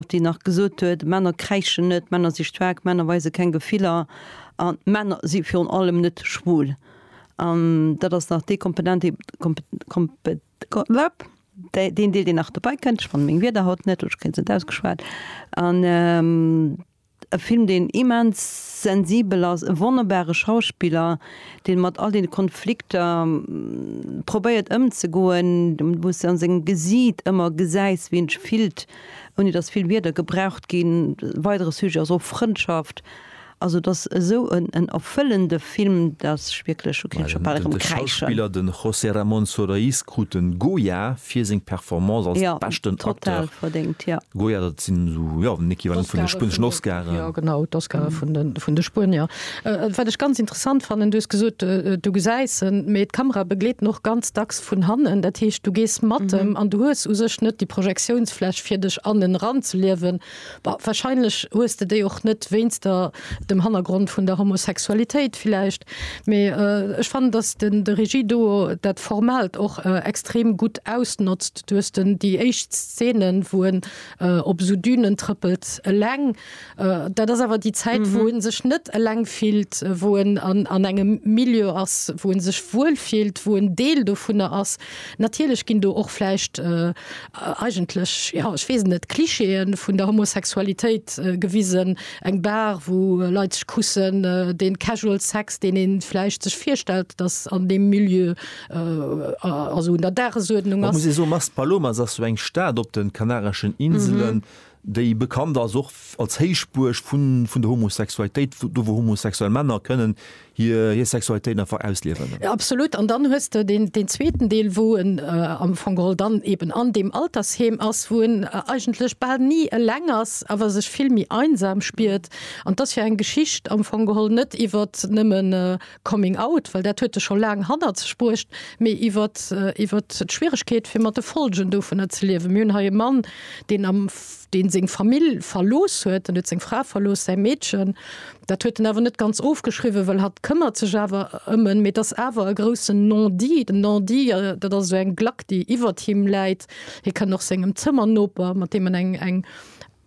déi nach gesot huet, Männer kräischen net, Männer si staark, Männer weise keng Gefiller a Männer si virun allem net schwul. An dat ass nach dee Komponent, dee, Komp, Kompe, Komp, dee, deen Deel, deen nach dobäi kënnt. Ech fannen meng Wierder haut net, oder ech kréien se net ausgeschwat. An. E Film, deen immens sensibel ass, e wonnerbare Schauspiller, dee mat all deene Konflikter probéiert ëmzegoen, wou s de an sengem Gesiit ëmmer gesäis, wéi en sech fillt, ouni datt vill Wierder gebraucht ginn. E weidere Sujet ass och Frëndschaft. Also et ass esou en erfëllende. Film dass ech wierklech hu kint scho bal erëm kräischen. De Schauspiller den José Ramón Soroiz krut den Goya fir seng Performance als beschten Acteur. Goya dat sinn esou jo den Equivalent vun de spueneschen Oscaren. Jo genau d'Oscaren vun de vun de Spuenier. Wat ech ganz interessant fannen, du hues gesot du gesäis en, mee d'Kamera begleet en och ganz dacks vun hannen. Dat heescht du gees mat em an du hues u sech net déi Projektiounsfläch fir dech an en eran ze liewen. Bah, wahrscheinlech hues de déi och net wéinst der dem Hannergrond vun der Homosexualitéit villäicht, mee ech fannen, dass de de Regie do dat Formaalt och extrem gutt ausnotzt. Du hues den déi éischt Szene wou en op esou Dünen trëppelt eleng. Dat ass awer déi Zäit wou en sech net eleng fillt, wou en an an engem Milieu ass wou en sech wuel fillt, wou en Deel dovunner ass. Natierlech ginn do och vläicht eigentlech, jo, ech weess et net, Klischeeë vun der Homosexualitéit gewisen, eng Bar, wou Leit sech kussen, dee Casual Sex, deen ee vläicht sech virstellt, datt an deem Milieu, also un der Dagesuerdnung ass. Mä muss ee soen, Maspalomas ass jo eng Stad op de Kanareschen Inselen, déi bekannt ass och als Héichbuerg vun der Homosexualitéit, do wou homosexuell Männer kënnen hir Sexualitéit einfach ausliewen. Absolut, an dann hues de deen zweeten Deel, wou en am Fong geholl dann eben an deem Altersheem ass, wou en eigentlech bal ni eleng ass, awer sech vill méi einsam spiert. An et ass jo eng Geschicht am Fong geholl net iwwert nëmmen, Coming out, well dat huet e scho laang hannert sech bruecht, mee iwwert, iwwert d'Schwieregkeet fir mat de Folgen dovunner ze liewen. Mir hunn hei e Mann, deen am, deen seng Famill verlooss huet, en huet seng Fra verlooss, säi Meedchen. Dat huet en awer net ganz ofgeschriwwen, well hatt këmmert sech awer ëm en. Mee et ass awer e groussen Non-dit. Den Non-dit, dat ass esou eng Glack, déi iwwert him läit. Hie kënnt och sengem Zëmmernoper, mat deem en eng, eng.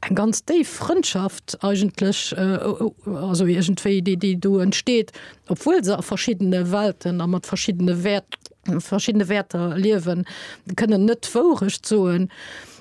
eng ganz déif Frëndschaft eigentlech, also iergendwéi, déi, déi do entsteet, obwuel se a verschiddene Welten a mat verschiddene Wäert, verschiddene Wäerter liewen, kënnen net d'Wourecht soen.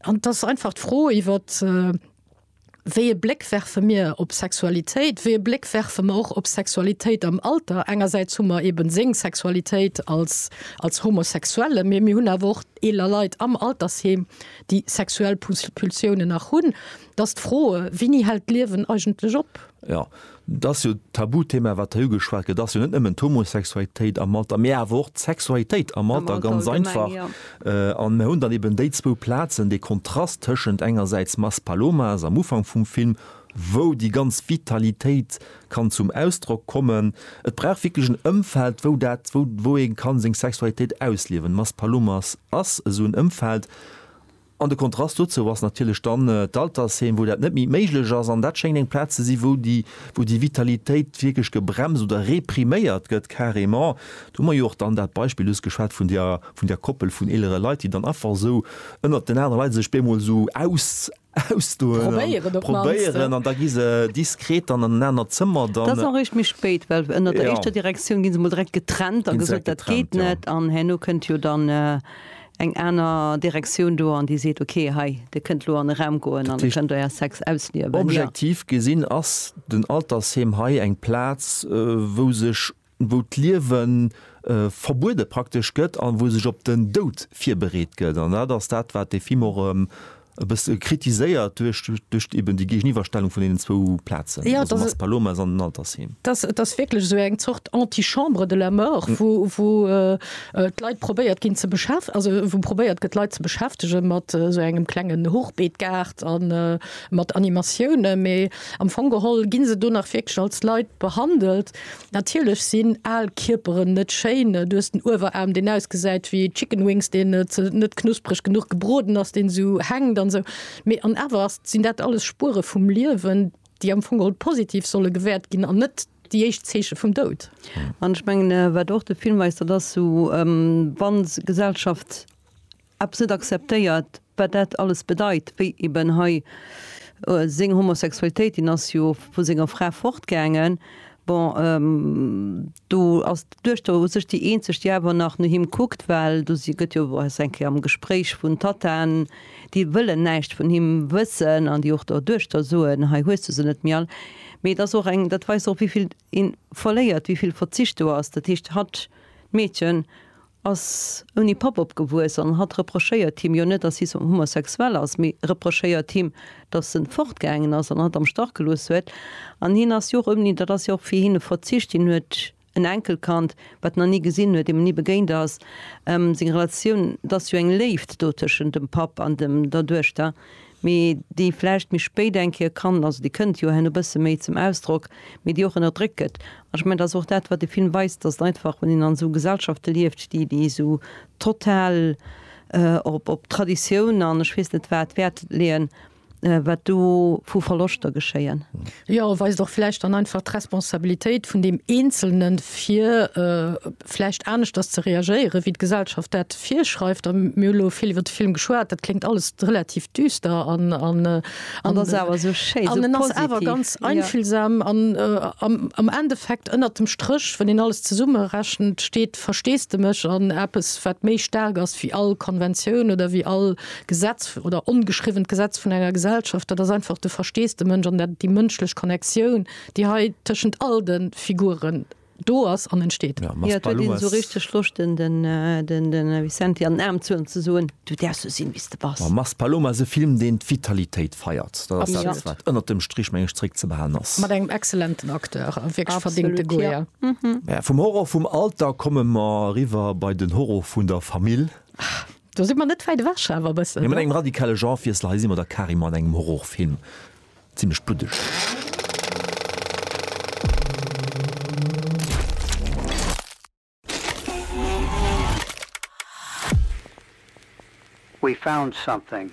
An et ass einfach d'Fro iwwer, wéi e Bléck werfe mir op Sexualitéit, wéi e Bléck werfe mer och op Sexualitéit am Alter. Engersäits hu mer eeben seng Sexualitéit als, als Homosexuelle, mee mir hunn awer och eeler Leit am Altersheem, déi sexuell Pulsiounen nach hunn, dass d'Froe Winni hält d'Liewen eigentlech op? Jo, et ass jo d'Tabuthema, wat hei ugeschwat gëtt, ass jo net nëmmen d'Homosexualitéit am Alter, mee awer och d'Sexualitéit am Alter, ganz einfach. An mir hunn dann eben déi zwou Plazen, dee Kontrast tëschent engersäits Maspalomas am Ufank vum Film, wou déi ganz Vitalitéit kann zum Ausdrock kommen. Et brauch wierklech en Ëmfeld, wou dat, wou, wou ee kann seng Sexualitéit ausliewen. Maspalomas ass esou en Ëmfeld. An de Kontrast dozou ass natierlech dann d'Altersheem, wou dat net méi méiglech ass. An dat schéngt eng Plaz ze sinn, wou déi, wou déi Vitalitéit wierklech gebremst oder repriméiert gëtt carrément. Do hu mer jo och dann dat Beispill just geschwat vun där, vun där Koppel vun eelere Leit, déi dann einfach esou ënnert den anere Leit sech bemol esou aus, ausdoen an probéieren an da gi se diskret dann an en anert Zëmmer. Dat ass och eréischt méi spéit, well ënnert der éischter Direktioun gi se mol direkt getrennt a gesot, dat geet net an herno kënnt jo dann eng aner Direktioun do an déi seet, okay, hei, dir kënnt elo an e Raum goen an dir kënnt Är Sex ausliewen. Objektiv gesinn ass den Altersheem hei eng Plaz, wou sech wou d'Liewe verbuede praktesch gëtt a wou sech op den Doud virbereet gëtt. An dat ass dat, wat de Film och e bësse kritiséiert duerch, duerch eben déi Géigeniwwerstellung vun deenen zwou Plazen, also Maspalomas an den Altersheem. Et ass wierklech esou eng Zort Antichambre de la mort, wou, wou d'Leit probéiert ginn ze beschäf-, also wou probéiert gëtt d'Leit ze beschäftege mat esou engem klengen Hochbeetgaart a mat Animatioune, mee am Fong geholl gi se do nach wierklech als Leit behandelt. Natierlech sinn al Kierperen net schéin. Du hues den Ueweraarm, deen ausgesäit wéi Chicken Wings, deen net knuspereg genuch gebroden ass, deen esou hänkt an esou. Mee an awer ass, sinn dat alles Spuere vum Liewen, déi am Fong geholl positiv solle gewäert ginn an net déi éischt Zeeche vum Doud. An ech mengen, wat och de Film weist, dat ass esou, wa Gesellschaft eppes net akzeptéiert, wat dat alles bedeit, wéi eben hei seng Homosexualitéit, deen ass jo vu senger Fra fortgaangen, bon do ass d'Duechter u sech déi eenzeg, déi awer nach no him kuckt, well do si gëtt jo se eng Kéier am Gespréich vun Tattaen, déi wëllen näischt vun him wëssen an déi och der Duechter soen, hei hues du se net méi all. Mee et ass och eng, dat weist och wéivill Een verléiert wéi vill Verzicht do ass. Dat heescht hatt, d'Meedchen, ass ouni Papp opgewuess an hatt reprochéiert him jo net, dass hie homosexuell ass, mee reprochéiert him, dass en fortgaangen ass an hatt am Stach gelooss huet. An hien ass jo och ouni, dat ass jo och fir hien e Verzicht. Hien huet en Enkelkand, wat en nach ni gesinn huet, deem en ni begéint ass. Seng Relatioun, et ass jo eng Léift do tëschent dem Papp an dem, der Duechter. mee déi vläicht méi spéit eng Kéier kann, also déi kënnt jo herno e bësse méi zum Ausdrock, mee déi och ënnerdréckt gëtt. An ech mengen, dat ass och dat, wat de Film weist, dass et einfach, wann een an esou Gesellschafte lieft, déi, déi esou total op, op Traditioun an ech weess net wat Wäert leeën, wat do vu Verloschter geschéien. Jo, weist och vläicht dann einfach d'Responsabilitéit vun deem Eenzelne fir vläicht aneschters ze reagéieren, wéi d'Gesellschaft dat virschreift. A mir hu lo vill iwwert de Film geschwat, dat kléngt alles relativ düster an ass awer esou schéin, esou positiv. An en ass awer ganz einfühlsam an am Endeffekt ënnert dem Stréch, wann een alles zesummerechent, steet Versteesdemech an eppes, wat méi staark ass wéi all Konventioun oder wéi all. Gesetz oder ongeschriwwent Gesetz vun enger Gesellschaft, dat ass einfach de Versteesdemënsch an dat déi mënschlech Connectioun, déi hei tëschent all de Figuren do ass an entsteet. Jo, et huet een esou richteg Loscht den den Vicenti an den Aarm zu an ze soen, Du däerfs sou sinn wéi s de bass. Ma Maspaloma ass e Film deen d'Vitalitéit feiert. Dat ass dat wat ënnert dem Strich meng ech zréck ze behalen ass. Mat engem excellenten Acteur a wierklech verdéngte Goya. Vum Horror vum Alter komme mer eriwwer bei den Horror vun der Famill. Do si mer net wäit ewech awer e bëssen. Mee mat engem radikale Genrewiessel, hei si mer da carrément an engem Horrorfilm, zimlech bluddeg. We found something.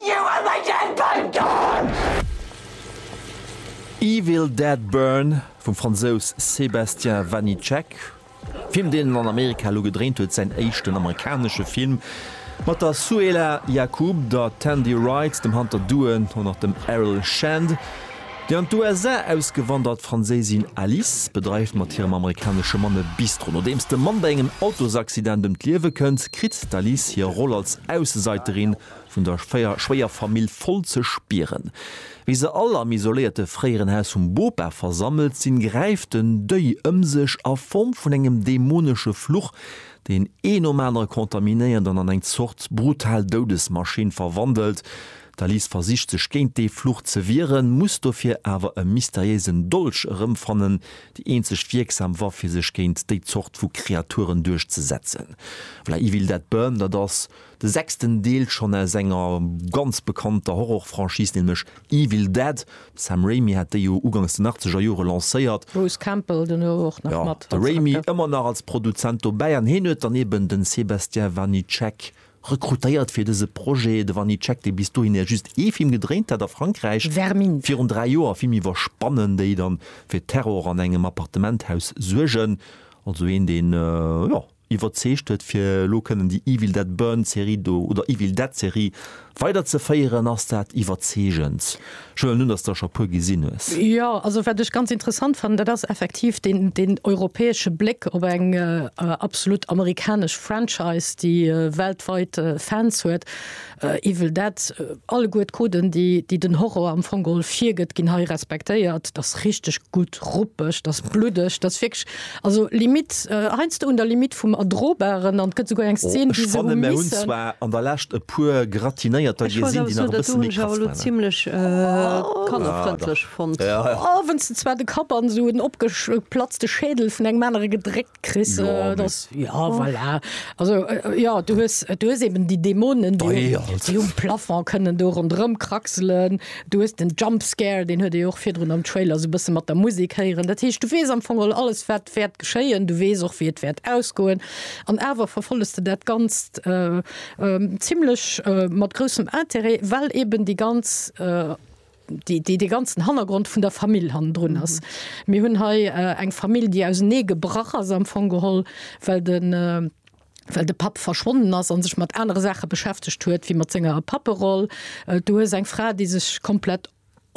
You were my dead burnt down! Evil Dead Burn vum Fransous Sébastien Vanitschek, Film deen en an Amerika elo gedréint huet, säin éischten amerikanesche Film, mat der Souhela Yacoub, der Tandy Wright, dem Hunter Doohan an och dem Errol Shand. Déi an d'USA ausgewandert Franséisin Alice bedreift mat hirem amerikanesche Mann e Bistro. Nodeems dem Mann bei engem Autosaccident ëm d'Liewe kënnt, kritt d'Alice hir Roll als Aussesaiterin vun der schwéier Famill voll ze spieren. Wéi se all am isoléierte fréieren Haus vum Bopa versammelt sinn, gräift den Deuil ëm sech a Form vun engem dämonesche Fluch, deen ee nom anere kontaminéiert an an eng Zort brutal Doudesmaschinn verwandelt. D'Alice versicht sech géint dee Fluch ze wieren, muss dofir awer e mysteriéisen Dolch erëmfannen, déi eenzeg wierksam Waff fir sech géint déi Zort vu Kreaturen duerchzesetzen. V'là Evil Dead Burn, dat ass De sechsten Deel schonn aus enger ganz bekannter Horror-Franchise, nämlech Evil Dead. De Sam Raimi hat déi jo ugangs den achtzeger Jore lancéiert. Bruce Campbell dono och nach mat als Acteur. Jo, de Raimi ëmmer nach als Produzent dobäi an hien huet dann eben de Sébastien Vanitschek rekrutéiert fir dëse Projet. De Vanitschek, dee bis dohinner just ee Film gedréint hat a Frankräich, Vermint. Virun dräi Joer, e Film iwwer Spannen, déi dann fir Terror an engem Appartementhaus suergen. Also een, deen, jo. iwwerzeegt huet fir elo kënnen déi Evil Dead Burn Serie do, oder Evil Dead Serie weider ze féieren. Ass dat iwwerzeegend? Ech huelen un dass der scho puer gesinn hues. Jo, also wat ech ganz interessant fannen, dat ass effektiv deen deen europäesche Bléck op eng absolut amerikanesch Franchise, déi weltweit Fans huet. Evil Dead, alleguer d'Coden déi den Horror am Fong geholl virgëtt ginn hei respektéiert. T'ass richteg gutt ruppeg, t'ass bluddeg, t'ass wierklech also limite heiansdo un der Limite vum Erdrobaren an t'gëtt souguer eng Szene wou se hu missen. Ech muss awer soen, dat do hunn ech awer elo zimlech kannerfrëndlech fonnt. Wenn's de zwar de Kapp an esou en opgeplatzte Schädel vun engem anere gedréckt. Chris, Jo, äh, mee- das, ja, voilà. Also, äh, ja, du hues, du hues eben die Dämonen, die, Dei, um- Alter. die um Plafond können do rondrëm kraxelen. Du hues den Jumpscare, den huet ee jo och virdrun am Trailer so bësse mat der Musik héieren. Dat heescht, du weess am Fong all alles, wat wäert geschéien. Du weess och, wéi et wäert ausgoen. An awer verfolles de dat Ganzt äh, äh, zimlech äh, mat groussem Interêt, well eben déi ganz äh, déi de ganzen Hannergrond vun der Famill hannendrun ass. Mir hunn hei eng Famill, déi ausernee gebrach ass am Fong geholl, well de well de Papp verschwonnen ass a sech mat anere Saache beschäftegt huet wéi mat senger Papperoll. Du hues eng Fra, déi sech komplett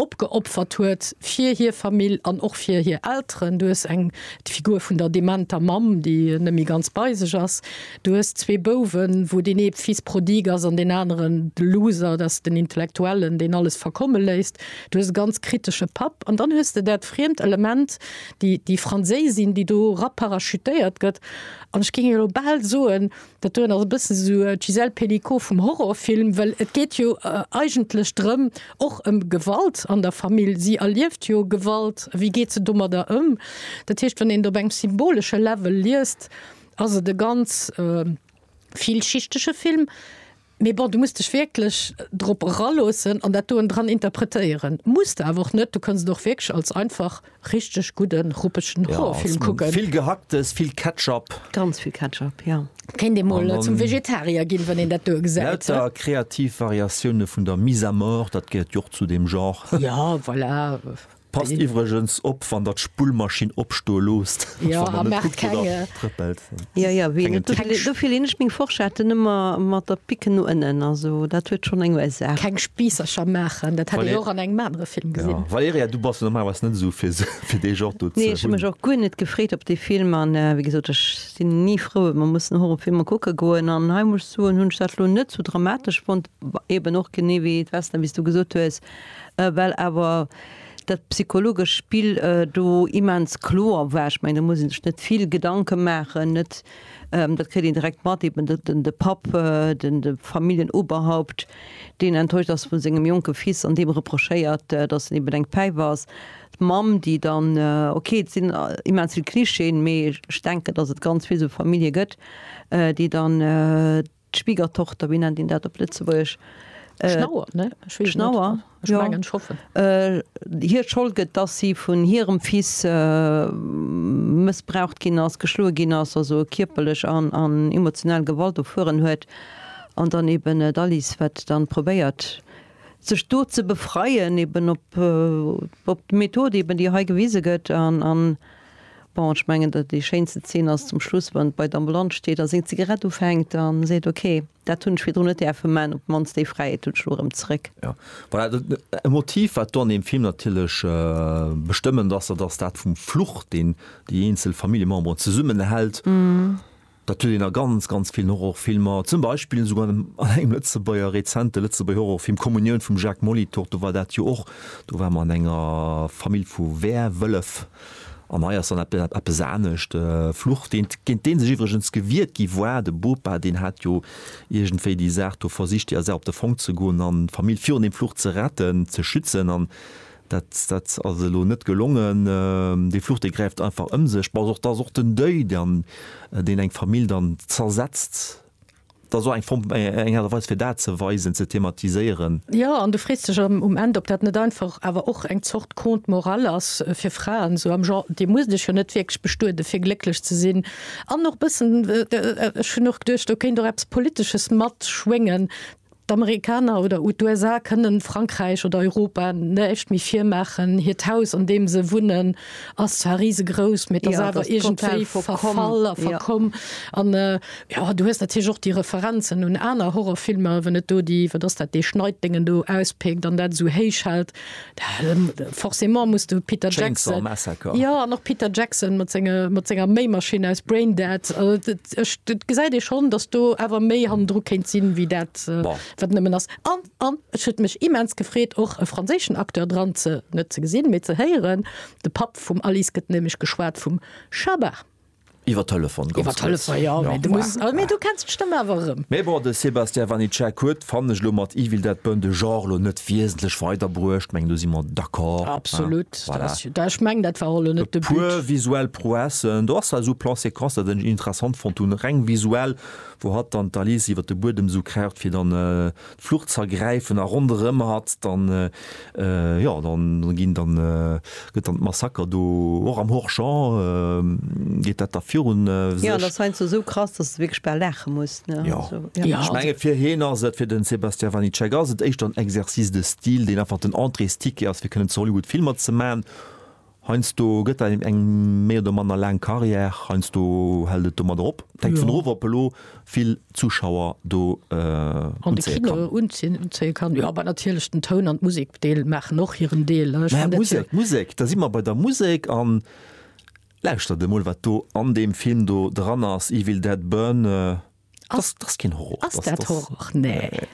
opgeopfert huet fir hir Famill an och fir hir Elteren. Du hues eng d'Figur vun der dementer Mamm, déi net méi ganz bei sech ass. Du hues zwee Bouwen, wou deen ee d'Fils prodigue ass an deen aneren de Loser, dat ass den Intellektuellen, deen alles verkomme léisst. Du hues e ganz kritesche Papp an dann hues de dat friemt Element, déi, déi Franséisin, déi do raparachutéiert gëtt. An ech géing jo elo bal soen, dat doen ass e bësse sou d'Gisèle Pelicot vum Horrorfilm, well et geet jo eigentlech drëm, och ëm Gewalt an der Famill. Si erlieft jo Gewalt. Wéi geet se domadder ëm? Dat heescht, wann een et op engem symbolesche Level liest, Ass et e ganz villschichtege Film, mee bon, du muss dech wierklech drop eraloossen an dat do enndran interpretéieren. Muss de awer och net, du kënns et och wierklech als einfach richteg gudde ruppegen Horrorfilm kucken. Vill Gehacktes, vill Ketchup. Ganz vill Ketchup, jo. Kéint ee mol zum Vegetarier ginn, wann een dat do gesäit. Lauter kreativ Variatioune vun der Mise à mort, dat gehéiert jo och zu deem Genre. Jo, voilà. Passt iwwregens op wann der d'Spullmaschinn opstoe loosst. Jo a maacht kenge. Jo jo ween et do dofir leen ech meng Forschette nëmmer mat der Pick no ënnen, also dat huet schonn eng Ursaach. Keng Spiissercher maachen, dat hat ee jo och an engem anere Film gesinn. Valerija du bass jo normalerweis net esou fir fir dee Genre do ze hunn. Nee ech hu mech och guer net gefreet op dee Film an wéi gesot ech sinn ni frou et mer mussen Horrorfilmer kucke goen an hei muss ech soen hunn ech dat lo net sou dramatesch fonnt, eben och genee wéi et Western wéi s du gesot hues. well awer dat psychologesch Spill do immens kloer war, ech mengen do muss een sech net vill Gedanke maachen, net dat kritt een direkt mat, eben de de Papp, den de Familienoberhaupt, deen enttäuscht ass vu sengem jonke Fils an deem reprochéiert, datt en eben eng Päif ass, d'Mamm déi dann, ok et sinn immens vill Clichéen, mee ech denken datt et ganz vill esou Famillje gëtt déi dann. D'Schwiegertochter, wéi nennt een dat op Lëtzebuergesch? Schnauer, ne? Schnauer, jo. Ech mengen scho. Hir Schold gëtt, dass si vun hirem Fils mëssbraucht ginn ass, geschloe ginn ass, also kierperlech an emotional Gewalt erfueren huet. An dann eben d'Alice, wat dann probéiert, sech do ze befreien, eben op d'Method eben, déi hei gewise gëtt. Bon, ech mengen, datt déi schéinste Zeen ass zum Schluss, wann en bei d'Ambulanz steet a seng Zigarett ufänkt a seet, ok, dat hunn ech virdrun net däerfe man, op d'mannst déi Fräiheet hunn ech elo erëm zeréck. Jo, voilà, dat e Motiv, wat do an deem Film natierlech bestëmmend ass, dat ass dat vum Fluch, deen déi eenzel Familljememberen zesummenhält. Dat huet een a ganz, ganz villen Horrorfilmer, zum Beispill esouguer an engem Lëtzebuerger, rezente Lëtzebuerger Horrorfilm Kommunioun vum Jacques Molitor, do war dat jo och, do war mer an enger Famill vu Werwëllef. An hei ass dann eppes anescht. Fluch, deen, géint deen sech iwwregens gewiert gi war, de Bopa, deen hat jo iergendwéi déi Saach do versicht, déi Affaire op de Fong ze goen an d'Famill virun deem Fluch ze retten, ze schützen an, Dat dat ass elo net gelongen. Dee Fluch, dee gräift einfach ëm sech. Bon, och dass och den Deuil dann, deen eng Famill dann zersetzt, dat ass och eng Form, eng Aart a Weis, fir dat ze weisen, ze thematiséieren. Jo, an du frees dech am, um Enn, ob dat net einfach awer och eng Zort Conte moral ass fir Fraen, sou am Genre, Dir musst Iech jo net wierklech bestueden, fir glécklech ze sinn. An och bëssen, ech hunn och geduecht, do kéint och eppes Politesches matschwéngen, D'Amerikaner oder u d'USA kënnen Frankräich oder Europa näischt méi virmaachen. Hiert Haus, an deem se wunnen, ass zwar risegrouss, mee et ass awer iergendwéi verfall a verkomm. An, jo, du hues natierlech och déi Referenzen un aner Horrorfilmer, wann et do déi, wat ass dat, dee Schneiddéngen do auspéckt an dat esou héich hält. Forcément muss du Peter Jackson, jo an och Peter Jackson mat senge mat senger Méimaschinn aus Braindead, ech et gesäit ee schonn, datt do awer méi hannendru kéint sinn, wéi dat wat nëmmen ass. An an et huet mech immens gefreet och e franséischen Acteur dran ze, net ze gesinn, mee ze héieren. De Papp vum Alice gëtt nämlech geschwat vum Schabar. Iwwer Telefon ganz kurz. Iwwer Telefon, ja, mee du muss, ah, mee du kenns d'Stëmm awer erëm. Mee bon, de Sébastien Vanitschek huet, fannen ech, elo mat Evil Dead Burn de Genre elo net wiesentlech weiderbruecht. Mengen, do si mer d'accord. Absolut, dat ass jo, ech mengen, dat war och elo net de But. E puer visuell Prouessen, do ass esou Plan-Séquences, dat ech interessant fonnt hunn, reng visuell, wou hatt dann d'Alice iwwer de Buedem esou kraucht, fir dann, Flucht z'ergräifen a ronderëm hatt dann, jo, da ginn dann, gëtt dann d'Massaker do, och am Horschon geet dat da virun sech. Jo, an ass heiansdo esou krass, dass s de wierklech bal laache muss, ne? Jo. Ech menge fir hien ass et, fir den Sebastian Vanitschek ass et éischter en Exercice de style, deen einfach den Entréesticket ass fir kënnen zu Hollywood Filmer ze man, Heiansdo gëtt dat eben eng méi oder manner laang Carrière, heiansdo hält et domadder op. Et hänkt vun erof, ob elo vill Zuschauer do unzéie kann. An de Kino unzéie kann, jo. Mä natierlech den Toun an d'Musekdeel maachen och hiren Deel. Mä Musek, d'Musek, da si mer bei der Musek. An lauschtert emol, wat do an deem Film do dran ass, Evil Dead Burn. Dat ass keen Horror. Ass dat Horror? Nee.